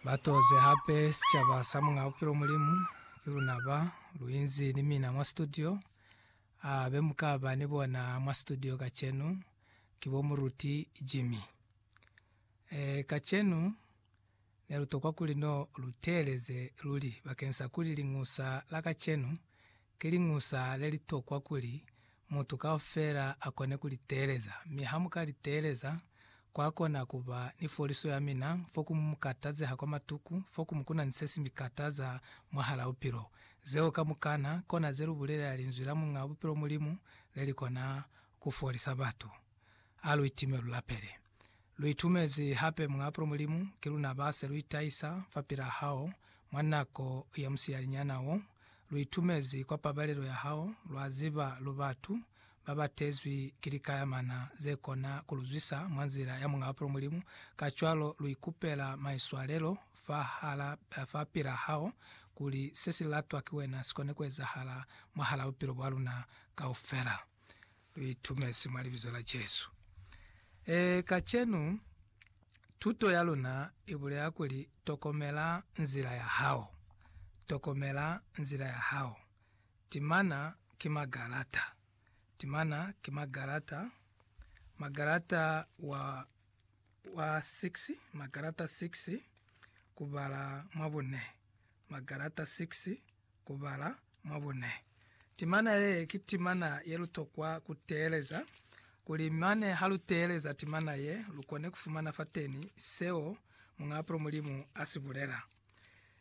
Ba toze hape sicaba sa Muñ'a Bupilo Mulimu, ki luna ba lu inzi ni mina mwa situdio. A be mu ka ba ni bona mwa situdio kacenu ki bo Muruti Jimmy. E, kacenu ne lu tokwa kuli no lu teeleze luli bakeng sa kuli Liñusa la kacenu ki liñusa le li tokwa kuli mutu kaufela a kone ku li teeleza, mi ha mu ka li teeleza, kwa kona ku ba ni foliso ya mina, foku mu mu katazeha kwa matuku, foku mu kuna ni se si mi kataza mwahal'a bupilo. Zeo kamukana kona ze lu bulelela Linzwi la Muñ'a Bupilo Mulimu le li kona ku folisa batu. a lu itime lu lapele. Lu itumezi hape Muñ'a Apulo Mulimu, ki luna ba se lu itahisa fapil'a hao mwa nako ya musiyalinyana wo. Lu itumezi kwa pabalelo ya hao, lwa ziba lu batu ba ba tezwi ki likayamana ze kona ku lu zwisa mwa nzila ya Muñ'a Apulo Mulimu, kacwalo lu ikupela maiswalelo fahal'a fapil'a hao, kuli se si latwa ki wena si kone ku ezahala mwahal'a bupilo bwa luna kaufela. lu itumezi mwa Libizo la Jesu. E, kacenu, tuto ya luna i bulela kuli, Tokomela nzila ya hao. Tokomela nzila ya hao. Timana ki magalata. Timana ki magalata. Magalata wa, wa 6, magalata 6, kubala mwa bune. Magalata 6, ku bala mwa bune. Timana ye ki timana ye lu tokwa ku teeleza, kuli mane ha lu teeleza timana ye, lu kone ku fumana fateni seo Muñ'a Apulo Mulimu a si bulela.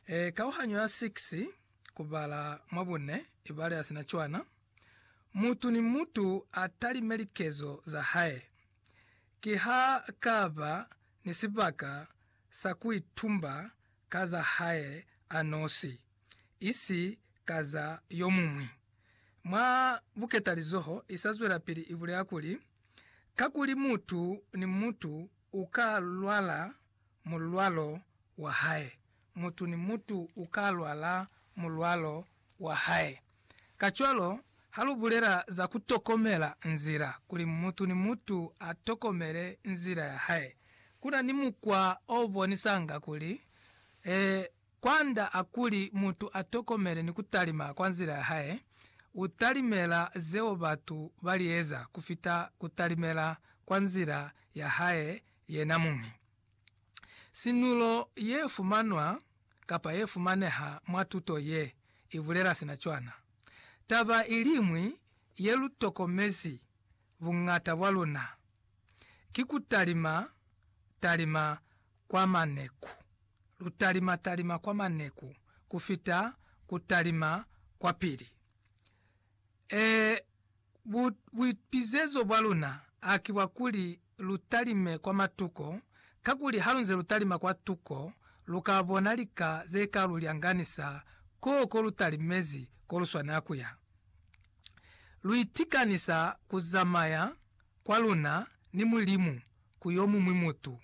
E, kauhanyo ya 6, ku bala mwa bune, ibale ya sina cwana, Mutu ni mutu a talime likezo za hae. Ki ha ka ba ni sibaka sa ku itumba ka za hae a nosi. isi ka za yomuñwi. Mwa buketalizoho isazwelapili ibulela kuli, Kakuli mutu ni mutu uka lwala mulwalo wahae, mutu ni mutu uka lwala mulwalo wahae. Kacwalo, halubulela za kutokomela nzila, kuli mutu ni mutu atokomele nzila yahae, kuna ni mukwa obonisanga kuli, e, Kwanda a kuli mutu a tokomele ni ku talima kwa nzila ya hae, u talimela zeo batu ba li eza ku fita ku talimela kwa nzila ya hae yena muñi. Sinulo ye fumanwa kapa ye fumaneha mwa tuto ye, i bulela sina cwana. Taba i liñwi ye lu tokomezi buñata bwa luna ki ku talima talima kwa maneku. Lu talima talima kwa maneku ku fita ku talima kwa pili. E, bu, buipizezo bwa luna haki bwa kuli lu talime kwa matuko, kakuli halunze lu talima kwa tuko, lu ka bona lika ze ka lu lyanganisa koo ko lu talimezi ko lu swanela kuya. Lu itikanisa ku zamaya kwa luna ni Mulimu ku yo muñwi mutu.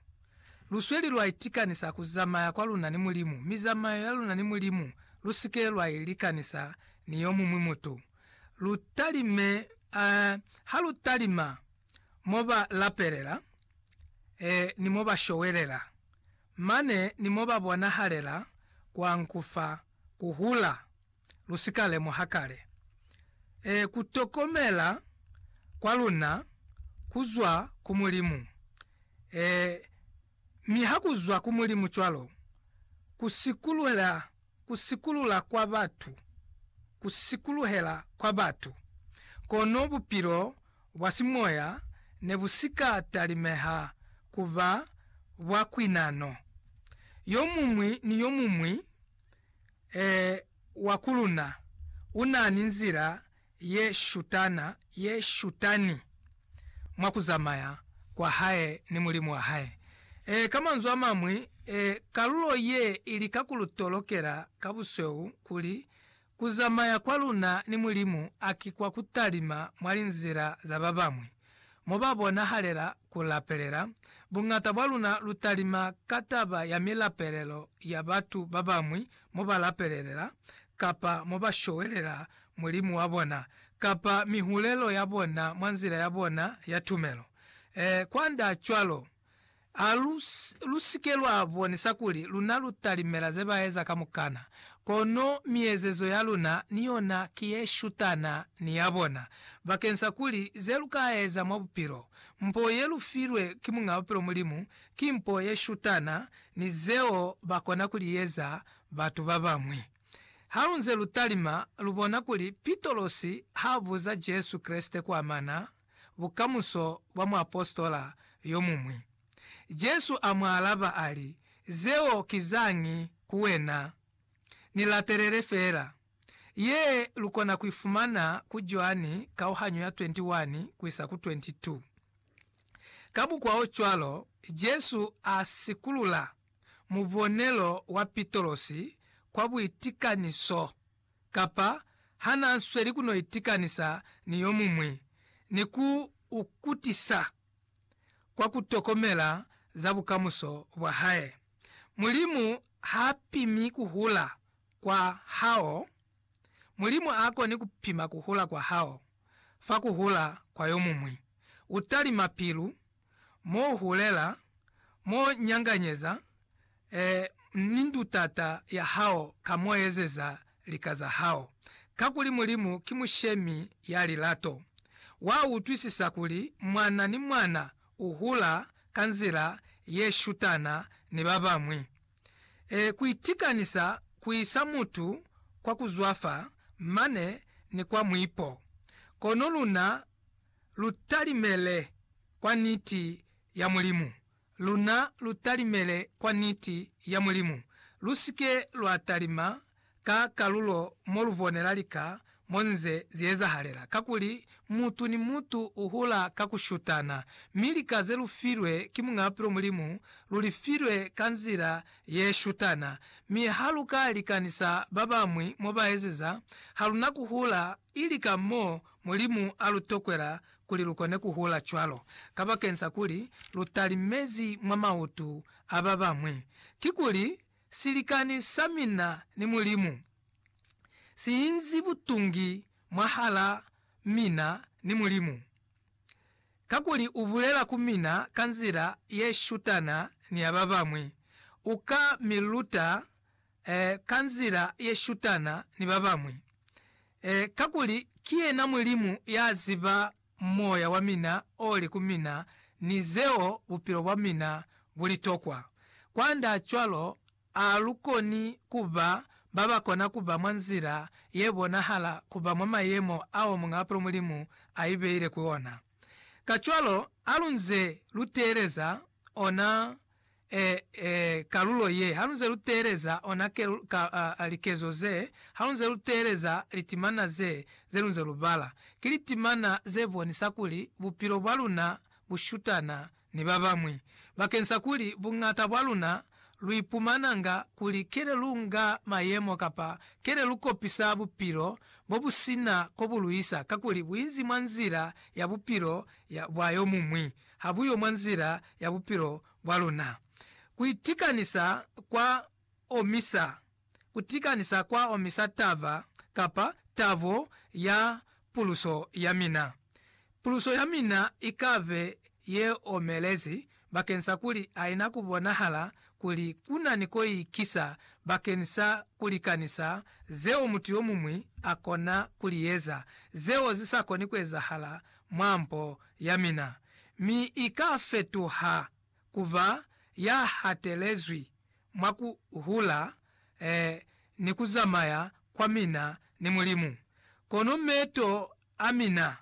Lu sweli lwa itikanisa ku zamaya kwa luna ni Mulimu, mi zamayo ya luna ni Mulimu lu si ke lwa i likanisa ni yo muñwi mutu. Lu talime, eh, ha lu talima mo ba lapelela, eh, ni mo ba showelela, mane ni mo ba bonahalela kwa nkufa, ku hula. lu si ka lemuha kale. Ee, ku tokomela kwa luna ku zwa ku Mulimu. Ee, mi ha ku zwa ku Mulimu cwalo, ku sikulula, ku sikulula kwa batu, ku sikuluhela kwa batu, kono bupilo bwa simoya ne bu si ka talimeha ku ba bwa kwinano. Yomuñwi ni yomuñwi. Ee, wa ku luna u na ni nzila ye shutana, ye shutani mwa ku zamaya kwa hae ni Mulimu wa hae. Ee, ka manzwi a mañwi, ee, kalulo ye i lika ku lu tolokela ka busweu kuli ku zamaya kwa luna ni Mulimu a ki kwa ku talima mwa linzila za ba bañwi. mo ba bonahalela ku lapelela, buñata bwa luna lu talima ka taba ya milapelelo ya batu ba bañwi mo ba lapelelela, kapa mo ba showelela Mulimu wa bona, kapa mihulelo ya bona mwa nzila ya bona ya tumelo. Ee, kwand'a cwalo, A lu, lu si ke lwa bonisa kuli luna lu talimela ze ba eza kamukana, kono miezezo ya luna ni yona ki ye shutana ni ya bona, bakeng sa kuli ze lu ka eza mwa bupilo. Mpo ye lu filwe ki Muñ'a Bupilo Mulimu, ki mpo ye shutana ni zeo ba kona ku li eza batu ba bañwi. Ha lu nze lu talima, lu bona kuli Pitolosi ha buza Jesu Kreste ku amana bukamuso bwa muapositola yomuñwi. Jesu a mu alaba a li, Zeo ki zañi ku wena? Ni latelele feela. Ye lu kona ku i fumana ku Joani kauhanyo ya 21 ku isa ku 22. Ka bukwaocwalo, Jesu a sikulula mubonelo wa Pitolosi kwa buitikaniso. kapa ha n'a sweli ku no itikanisa ni yo muñwi ni ku u kutisa kwa ku tokomela za bukamuso bwa hae. Mulimu h'a pimi ku hula kwa hao. Mulimu a koni ku pima ku hula kwa hao fa ku hula kwa yo muñwi. U talima pilu mo hulela, mo nyanganyeza, eh, ni ndutata ya hao ka mo ezeza lika za hao. Kakuli Mulimu ki Mushemi ya lilato. Wa utwisisa kuli mwana ni mwana u hula ka nzila ye shutana ni ba bañwi. Eh, ku itikanisa ku isa mutu kwa ku zwafa mane ni kwa muipo. Kono luna, lu talimele kwa niti ya Mulimu. Luna lu talimele kwa niti ya Mulimu. Lu si ke lwa talima ka kalulo mo lu bonela lika mo nze zi ezahalela, kakuli mutu ni mutu u hula ka ku shutana. Mi lika ze lu filwe ki Muñ'a Bupilo Mulimu, lu li filwe ka nzila ye shutana. Mi ha lu ka likanisa ba bañwi mo ba ezeza, ha lu na ku hula ili ka mo Mulimu a lu tokwela kuli lu kone ku hula cwalo, kabakenta kuli lu talimezi mwa mautu a ba bañwi. Kikuli, silikani sa mina ni Mulimu si inzi butungi mwahal'a mina ni Mulimu, kakuli u bulela ku mina ka nzila ye shutana ni ya ba bañwi. U ka mi luta eh, ka nzila ye shutana ni ba bañwi, eh, kakuli ki yena Mulimu ya ziba moya wa mina o li ku mina ni zeo bupilo bwa mina bu li tokwa. Kwand'a cwalo, a lu koni ku ba ba ba kona ku ba mwa nzila ye bonahala ku ba mwa mayemo ao Muñ'apelo Mulimu a ibeile ku ona. Kacwalo, ha lu nze lu teeleza ona e, e, kalulo ye, halunze luteeleza ona ke, ka, a, a, likezo ze, halunze luteeleza litimana ze, ze lunze lubala, ki litimana ze bonisa kuli bupilo bwa luna bu shutana ni babañwi, bakensa kuli buñata bwa luna lu ipumananga kuli kele lu nga mayemo kapa kele lu kopisa bupilo bo bu sina ko bu luisa, kakuli bu inzi mwa nzila ya bupilo ya, bwa yomuñwi. ha buyo mwa nzila ya bupilo bwa luna. Ku itikanisa kwa omisa. Ku tikanisa kwa omisa taba kapa tabo ya puluso ya mina. Puluso ya mina i ka be ye omelezi bakeni sa kuli ha ina ku bonahala kuli ku na ni ko i kisa bakeni sa ku likanisa zeo mutu yo muñwi a kona ku li eza, zeo zi sa koni ku ezahala mwa mpo ya mina, mi i ka fetuha ku ba ya hatelezwi mwa ku hula eh, ni ku zamaya kwa mina ni Mulimu. Kono meto a mina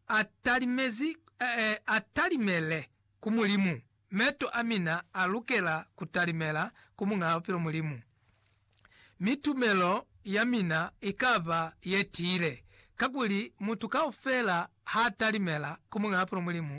a talimezi, eh, a talimele ku Mulimu Meto a mina a lukela ku talimela ku Muñaa Bupilo Mulimu, mi tumelo ya mina i ka ba ye tiile. Kakuli mutu kaufela ha talimela ku Muñaa Bupilo Mulimu,